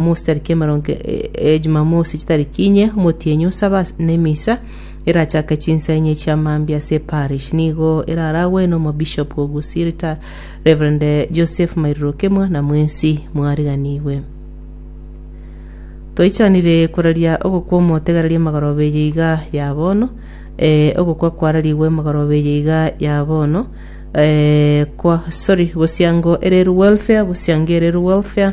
Amosi tariki emerongo e Jumamosi chitariki inye omotienyi osabe ase- na emisa erachake chinsa inye chia mambia ase eparish nigo eraragwe n'omobishop o Gusii Rita Rev Joseph Mairoroke mwana mwensi mwariganigwe Toichanire koraria ogokwa omotegereria emagoroba eye iga ya bono, eh, ogokwa kwararigwe emagoroba eye iga ya bono, eh, kwa, sorry, bosiango ererwe welfare, bosiango ererwe welfare,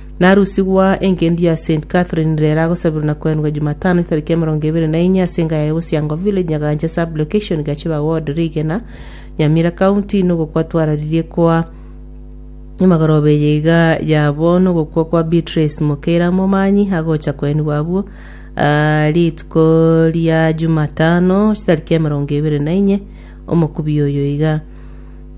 Narusigwa engencho ya St. Catherine ere eragosabirwa na koenwa Jumatano etariki emerongo ebere na enye ase engaya ya Bosiango Village, Nyagaanche Sub-location, Gachiba Ward, Rigena, Nyamira County, na ogokwa twararirie koa emagoroba eye iga ya bono ogokwa kwa Beatrice Mokeira Momanyi agocha koenigwa abwo aa rituko ria Jumatano chitariki emerongo ebere na inye omokubi oyo iga.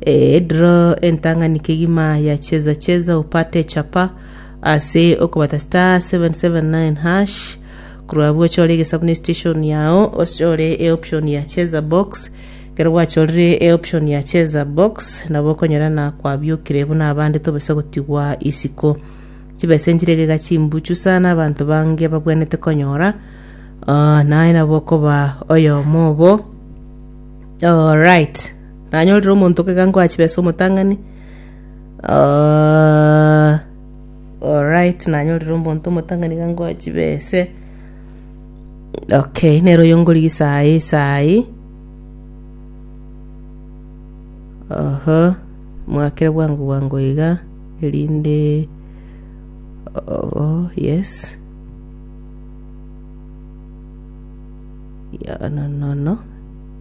Ediro entang'ani kegima ya Cheza Cheza Upate Chapa ase okobata *779# korwa abwo ochore egesaku ne station yao ochore e option ya Cheza Box ekero gwachorire e option ya Cheza Box nabo okonyora na kwabiokire buna abande tobisa gotigwa isiko chibesa enchire iga iga chimbuchu sana abanto bange babwenerete konyora ah, naye nabo okoba oyomo obo Alright. Nanyorire omonto ogega ngoa chibesa omotang'ani, alright, nanyorire omonto omotang'ani iga ngoa chibese, okay, nere oyo ngorigia saa eye saa eye, oho, mwakere bwango bwango iga, erinde, oho, yes, yononono.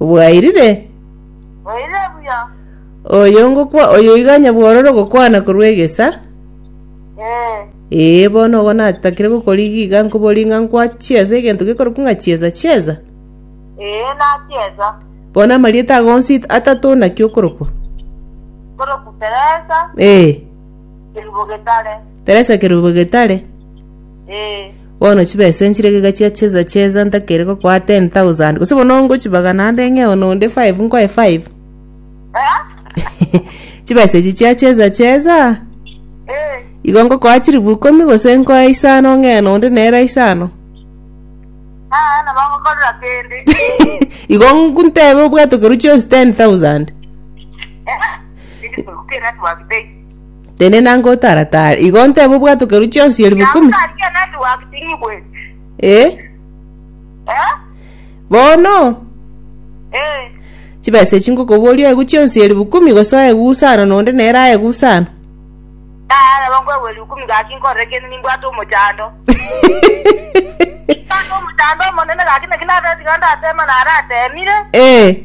Bwairire? Oire buya. Oyo ngokwa oyo iga onye bwororo gokwana korwa egesa. Eh. Ee, bono ogo natakire gokorigia iga nkoborie ng'a nkwa chiesa egento gekorokwa ng'a chiesa chiesa? Eh, nachiesa. Bono amarieta ago onsi atato naki okorokwa? Korokwa Teresa. Eh. Kerubo getare. Teresa kerubo getare. Eh. Bono chibesa enchi regega chiachesa chesa ntakere gokoa ten thousand gose bono ngochibaga naende ng'e one onde five nkoe five. Chibesa echi chiachesa chesa igo ngokoa chilifu ikomi gose nkoe isano ng'e one onde nere isano. Igo ntebe obwatokeru chionsi ten thousand. Tenena ngotara tara. Igo nteba obwatokeru chionsi elifu Yao kumi. ngaki ya network ting'ibweti. Eh? Eh? Bono Eh. chibesa echi ngokoboria oegwe chionsi elifu kumi gose oegwe usano na onde nere aegwe usano. Tara nabo nkoegwa elifu kumi gaki nkorere kende nimbwate omochando. Nimbwate omochando omonene gaki naki nabeti iga ndatema naratemire. Eh.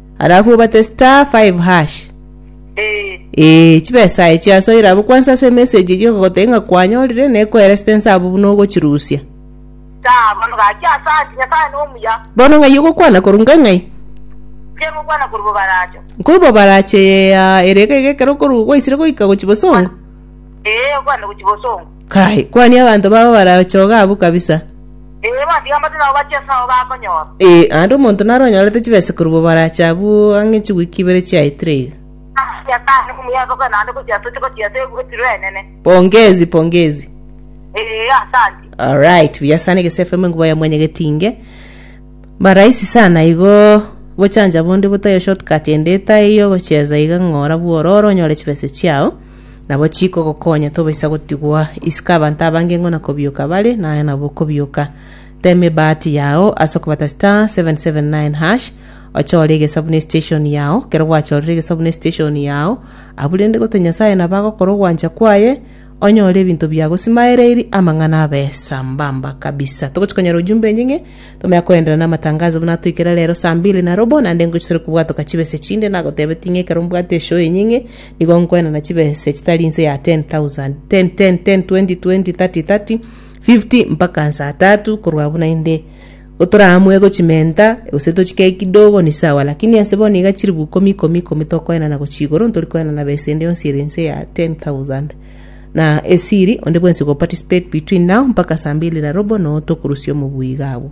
Alafu obate star 5 hash. Eh. Eh, chibesa echi asoire abo kwanza ase message echi okagotei ng'a kwanyorire ne koera stance abo buna ogochirusia. Star, mano gaki asati, nyasaye no omuya. Bono ng'ai ogokwana korunga ng'ai? Mpia gokwana kori bobaracho. Nkori bobarache ya ere iga iga ekero okoru gwaisire goika gochi bosongo. Eh, okwane gochi bosongo. Kai, kwania abanto babo barachoge abwo kabisa. Ee, bandigambatie nabo bachie ase abo bakonyora. Ee, naende omonto naro onyorete chibesa korwa bo barache abwo ang'e chigwiki ibere chiaetire iga. Ase Nyasae nokomoyia ase okwenda naende gochia toche gochia ase ebugetiro enene. Pongezi, pongezi. Ee, asanti. Alright, buya sana egese FM enkuba ya mwenye getinge. Maraisi sana igo bochanja bonde botayo shortcut ende etaiyo gocheza iga ng'ora bwororo onyore chibese chiao. Nabo chikogokonya tobaisa gotigwa isiko abanto abange ng'o na kobioka bare, naye nabo okobioka. Teema ebahati yao ase okobata star 779 hash, ochore egesabu ne station yao, kero gwachorire egesabu ne station yao, abwo rende gote Nyasaye nabo agokora ogwancha kwaye, onyore ebinto biagosimaereiri amang'ana abe sambamba kabisa. Togochi konyora ujumbe enye ng'e, tomanya koenderera na amatangazo buna atoikera rero saa mbili na robo, naende ngochire kobwatoka chibesa echinde, nagotebeti ng'e ekero mbwate eshow enye ng'e, Nigo nkwenana chibesa echitari inse ya ten thousand, ten, ten, ten, twenty, twenty, thirty, thirty, fifty, mpaka nsaa tatu, korwa buna inde gotoraamue gochimenta, gose tochikee kidogo ni sawa, lakini ase bono iga chiribu ikomi, ikomi, ikomi tokoenana gochia igoro, ntori koenana besa ende yonsi ere inse ya ten thousand. Na esiri, onde bwensi ogoparticipate between now mpaka saa mbili na robo, noo tokorusia omobui iga abwo.